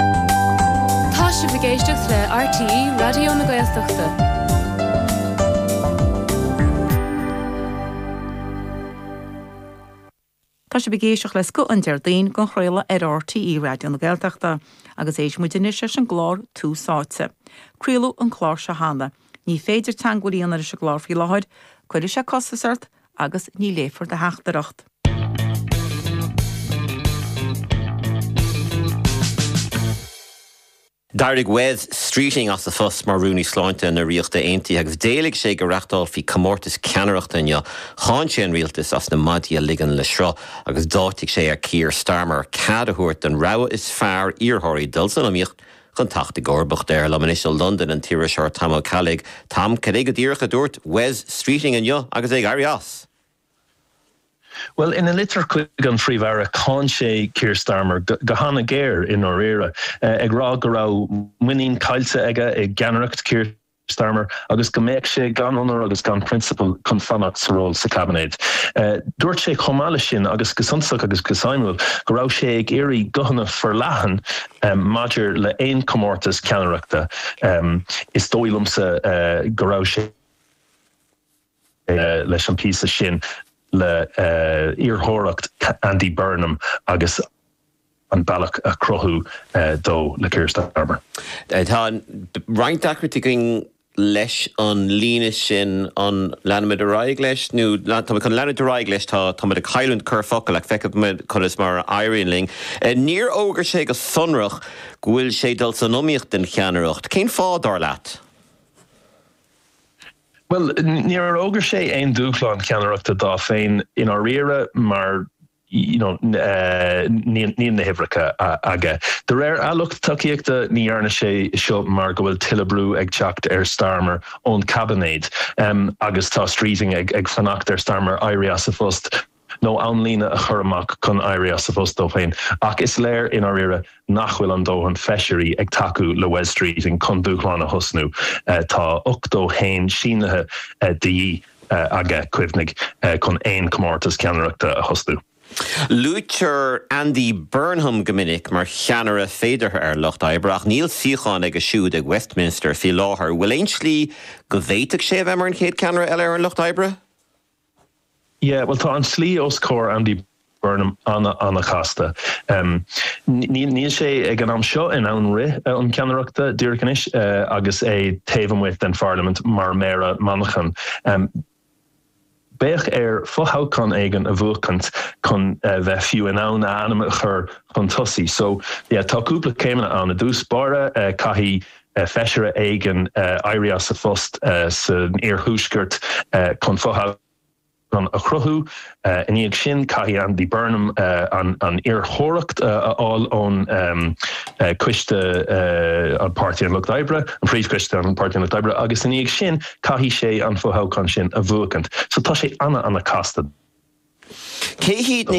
Tá sibh ag éisteacht le RTÉ Raidió na Gaeltachta. Tá sibh ag éisteacht le Scoth an Déardaoin dhá chraoladh ar RTÉ Raidió na Gaeltachta agus éistfidh muid anois leis an gclár Tús Áite. Craoladh an clár seo cheana. Ní féidir teagmháil a dhéanamh leis an gclár faoi láthair. Cuirfidh sé costas ort agus ní léifear do theachtaireacht. D'éirigh Wes Streeting as a phost mar Rúnaí Sláinte na Ríochta Aontaithe agus d'éiligh sé go reáchtálfaí comórtas ceannaireachta inniu. Cháin sé an rialtas as na maidí a ligean le sruth agus d'áitigh sé ar Keir Starmer cead a thabhairt don rogha is fearr iarrthóirí dul san iomaíocht Chun teacht i gcomharbacht air. Liom anois ó Londain an t-iriseoir Tom Ó Ceallaigh, Tom, cad é go díreach a dúirt Wes Streeting inniu agus é ag éirí as? Bhuel, ina litir chuig an bPríomh-Aire, cháin sé Keir Starmer go han-ghéar i ndáiríre, ag rá go raibh muinín caillte aige i gceannaireacht Keir Starmer agus go mbeadh sé gan onóir agus gan prionsabal chun fanacht sa ról sa chaibinéad. Dúirt sé chomh maith leis sin, agus go suntasach agus go suimiúil, go raibh sé ag iarraidh guthanna forleathan maidir le haon chomórtas ceannaireachta. Is dóigh liomsa go raibh sé. leis an bpíosa sin le iarrthóireacht Andy Burnham agus an bealach a chruthú dó le Keir Starmer. Tá roinnt deacrachtaí againn leis an líne sin, an leanfaimid ar aghaidh leis nó tá muid chun leanúint ar aghaidh leis, tá muid ag cailliúint corrfhocal ach feicfimid conas mar a éiríonn linn. Níor fhógair sé go sonrach go bhfuil sé ag dul san iomaíocht don cheannaireacht. Cén fáth, dar leat? Bhuel, níor fhógair sé aon dúshlán ceannaireachta dó féin i ndáiríre mar, you know, níl na huimhreacha aige. De réir a lucht tacaíochta, ní dhearna sé seo mar go bhfuil tuilleadh brú ag teacht ar Starmer ón gcaibinéad, em, agus tá Streeting ag fanacht ar Starmer éirí as a phost. nó amlíne a chur amach chun éirí as a phost dó féin, ach is léir i ndáiríre nach bhfuil an dóthain feisirí ag tacú le Wes Streeting chun dúshlán a thosnú. Tá 81 sínithe de dhíth aige, cuimhnigh, chun aon chomórtas ceannaireachta a thosnú. Luaitear Andy Burnham go minic mar cheannaire féideartha ar an Lucht Oibre, ach níl suíochán aige siúd ag Westminster faoi láthair. Bhfuil aon slí go bhféadfadh sé a bheith mar an chéad ceannaire eile ar an Lucht Oibre? Yeah, bhuel, tá an tslí os comhair Andy Burnham an-an-chasta. Níl sé, ag an am seo, in ann rith um cheannaireachta díreach anois agus é taobh amuigh den Pharlaimint mar Méara Manchain. Beidh air fothoghchán éigin a bhuachaint chun bheith fiú in ann a ainm a chur chun tosaigh. So, yeah, tá cúpla céimeanna ann. I dtús báire, caithfidh. feisire éigin éirí as a phost san iarthuaisceart chun fothoghchán a chruthú. I ndiaidh sin, caithfidh Andy Burnham an iarrthóireacht a fháil ón Coiste an Páirtí an Lucht Oibre, an Phríomhchoiste an Páirtí an Lucht Oibre, agus i ndiaidh sin caithfidh sé an fothoghchán sin a bhuachaint. So tá sé ana ana casta dó. Cé hiad na.